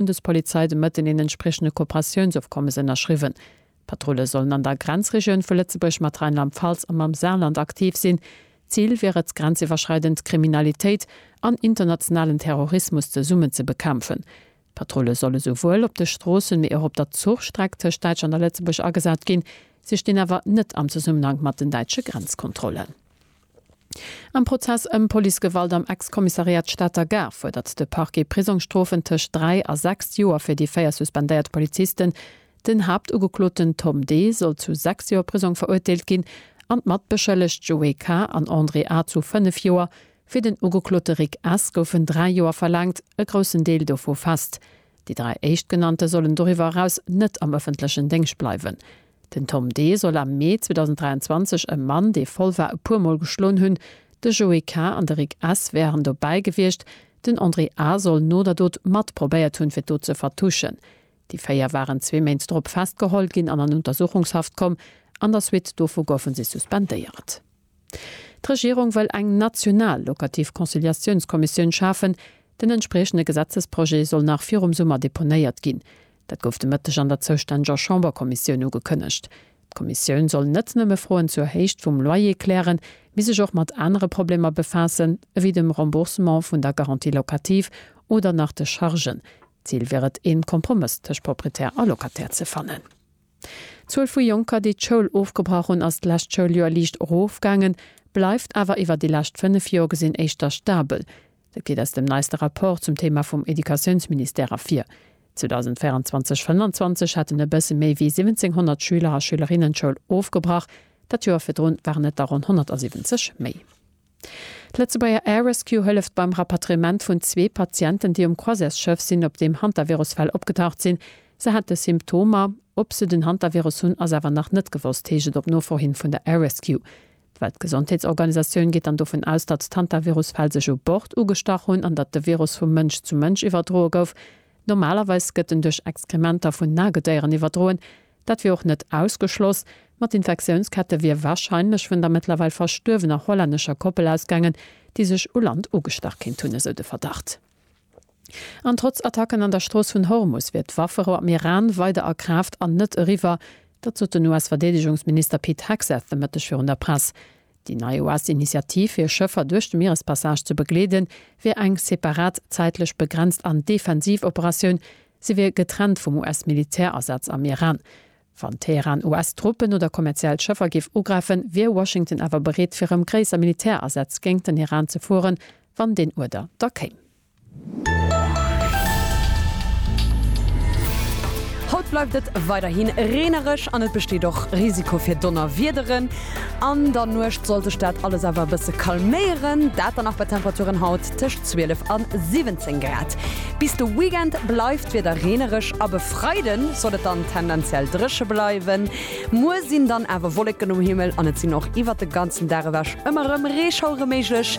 d'Bundespolizei de Mëtten een entspriechende Kooperatiounsofkommes ënnerschriwwen. D'Patrulle sollen an der Grenzregioun vu Lëtzebuerg mat Rheinland-Pfalz a mam Saarland aktiv sinn. Zil wier et, grenziwwerschreidend Kriminalitéit an internationalen Terrorismus zesummen ze bekämpfen. D'Patrulle solle souwuel op de Stroossen, mee och op der Zuchstreck tëscht Däitschland a Lëtzebuerg agesat ginn. Si stinn awer net am Zesummenhank mat den däitsche Grenzkontrollen. Am Prozess ëm Policegewalt am Ex-Kommissariat Stater Gare fuerdert de Parquet Prisongsstrofen tëscht dräi a sechs Joer fir déi véier suspendéiert Polizisten. Den Haaptugekloten Tom D. soll zu sechs Joer Prisong verurteelt ginn an d'Matbeschëllegt Joé K. an André A. zu fënnef Joer. Fir den Ugeklote Rick S. goufen dräi Joer verlaangt, e groussen Deel dovu fest. Déi dräi Éischtgenannte sollen doriwwer eraus net am ëffentlechen Déngscht bleiwen. Den Tom D. soll am Mee 2023 e Mann, dee voll war, e puer Mol geschloen hunn. De Joé K. an de Rick S. wären dobäi gewiescht. Den André A. soll no der Dot mat probéiert hunn, fir d'Dot ze vertuschen. Déi véier waren zwee Méint drop festgeholl ginn an an Untersuchungshaft komm. An der Suite dovu goufe si suspendéiert. D'Regierung wëll eng national locativ Conciliatiounskommissioun schafen. Den entspriechende Gesetzesprojet soll nach virum Summer deponéiert ginn. Dat gouf de Mëtteg an der zoustänneger Chamberkommissioun ugekënnegt. D'Kommissioun soll net nëmme Froen zur Héicht vum Loyer klären, mee sech och mat anere Problemer befaassen, ewéi dem Remboursement vun der Garantie locative oder nach de Chargen. D'Zil wier et, een Kompromëss tëscht Proprietär a Locataire ze fannen. D'Zuel vu Jonker, déi d'Schoul ofgebrach hunn, ass d'lescht Schouljoer liicht erofgaangen, bleift awer iwwer déi lescht fënnef Joer gesinn éischter stabel. Dat geet aus dem neiste Rapport zum Theema vum Educatiounsministère ervir. 2024/25 haten e bësse méi wéi 1.700 Schüler a Schülerinnen d'Schoul ofgebrach, dat Joer virdrun waren et der ronn 170 méi. D'Lëtzebuerger Air Rescue hëlleft beim Rapatriement vun zwee Patienten, déi um Croisièresschëff sinn, op deem Hantavirus-Fäll opgetaucht sinn. Se hate Symptomer. Ob se den Hantavirus hunn, ass awer nach net gewosst, heescht et op Nofro hin vun der Air Rescue. D'Weltgesondheetsorganisatioun geet dann dovun aus, datt d'Hantavirus-Fäll sech u Bord ugestach hunn an datt de Virus vu Mënsch zu Mënsch iwwerdroe gouf. Normalerweis gëtt en duerch Exkrementer vun Nagedéieren iwwerdroen, Dat wier och net ausgeschloss. Ma d'Infektiounskette wier warscheinlech vun der mëttlerweil verstuerwener hollännescher Koppel ausgaangen, déi sech u Land ugestach kéint hunn, esou de Verdacht. An trotz Attacken an der Strooss vun Hormus wier d'Wafferou am Iran weider a Kraaft an net eriwwer. Dat sot den US-Verdeedegungsminister Pete Hegseth de Mëtteg virun der Press. Déi nei OAST-Initiativ, fir Schëffer duerch de Mierespassage ze begleeden, wier eng separat, zäitlech begrenzt an defensiv Operatioun. Se wier getrennt vum US-Militärasaz am Iran. Wann Teheran US-Truppen oder kommerziell Schëffer géif ugräifen, wier Washington awer bereet fir erëm gréisser Militärasätz géingt den Iran ze fueren, wann deen Uerder da kéim. Haut bleift et weiderhi reenereg an et besteet och Risiko fir Donnerwiederen. An der Nuecht soll sech dat alles awer e bësse calméieren, dat dann nach bei Temperaturen haut tëscht 12 a 17 Grad. Bis de Weekend bleift d'Wieder reenereg ab e Freide soll et dann tendenziell dréche bleiwen. Muer sinn dann awer Wolleken um Himmel an et sinn och iwwert de ganzen Dag ewech ëmmer erëm Reeschauere méiglech.